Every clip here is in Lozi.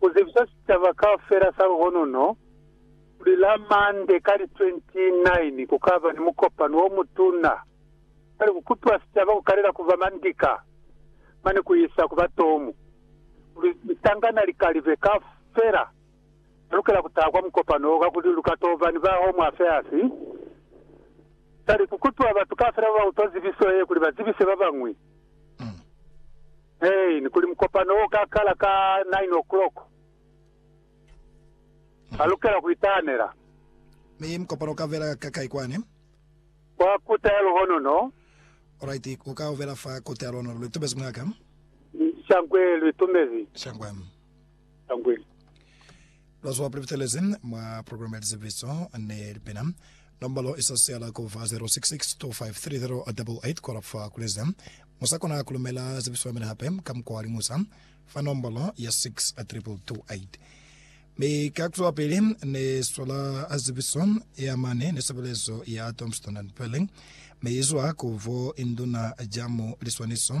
ku zibisa sicaba kaufela sa luhonono kuli la Mande ka li 29 ku ka ba ni mukopano o mutuna kwani ku kupiwa sicaba ku kalela ku ba mandika mane ku isa ku ba tomu, kuli litangana likalibe kaufela ba lukela ku taha kwa mukopano wo kakuli lu ka to ba ni ba Home Affairs. Sali ku kupiwa batu kaufela ba ba utwa zibiso ye kuli ba zibise ba bañwi. Main, kuli mukopano o ka kala ka 9 o'clock. Ha lukela ku itahanela. Mi mukopano u ka vela ka kai kwani? Kwa Kota ya Luhonono. Alright, u ka vela fa Kota ya Luhonono. Lu itumezi mwa ka? Shangwe lu itumezi. Shangwe. Tangweni. Lwa zwa Pulevitelezi mwa Programme ya Lizeviso ni Lipina. Nombolo i sa siala ku ba 0662533088 ku alafa kulezi. Mu sa kona ku lumela zibiso ya mina hape ka mukwa wa liñusa fa nombolo ya 62228. Mi ka ku zwapili ni swala zibiso ya mane ni sebelezo ya Tombstone and Pearling, mi i zwa ku bo induna ja mu liswaniso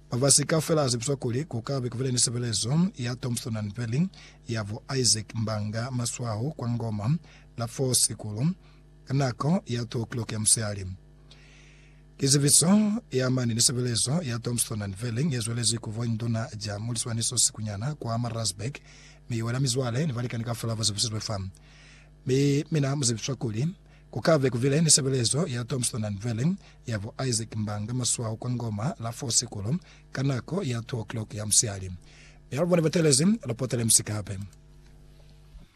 Mafasi kaufela azibiswa kuli ku ka be kubile ni sebelezo ya Thompson and Perley ya bo Isaac Mbanga Maswaho kwa Ngoma la 4 Sikulo ka nako ya 2 o'clock ya musihali. Ki zibiso ye amani ni sebelezo ya Thompson and Perley ye zwelezi ku voinduna ja muliswaniso sikunyana kwa Maritzburg, mi ye wela mizwale ni balikani kaufela ba zibisizwe fa. Mi mina mu zibiswa kuli, Ku ka be ku bile ni sebelezo ya Tombstone and Veiling ya bo Isaac Mbanga Maswaho kwa Ngoma la fo Sikulo ka nako ya 2 o'clock ya musihali. Mi alubo ne batelezi, lu potele misi kape.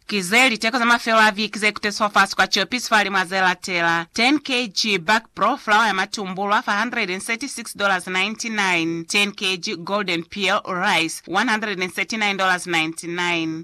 Ki ze liteko za mafelo a viki ze kuteswa fasi kwa ciopisi fa limu a ze latela, 10 kg Buck Brough fulawa ya matumbulwa fa $136.99, 10 kg Golden Peal Rice, $139.99,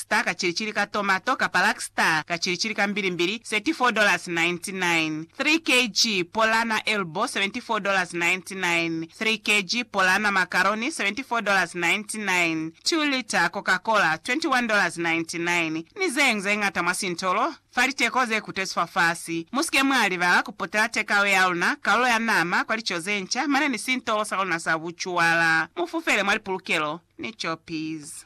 Star ka cilicili ka tomato kapa Luck Star ka cilicili ka mbilimbili, $34.99. 3 kg Polana Elbow, $74.99. 3 kg Polana Macaroni, $74.99. 2 lita Coca Cola, $21.99. Ni zeñwi ze ñata mwa sintolo fa liteko ze kutezi fafasi. Mu si ke mwa libala ku potela takeaway ya luna, kalulo ya nama, kwa lico ze nca, mane ni sintolo sa luna sa bucuwala. Mu fufele mwa lipulukelo ni copies.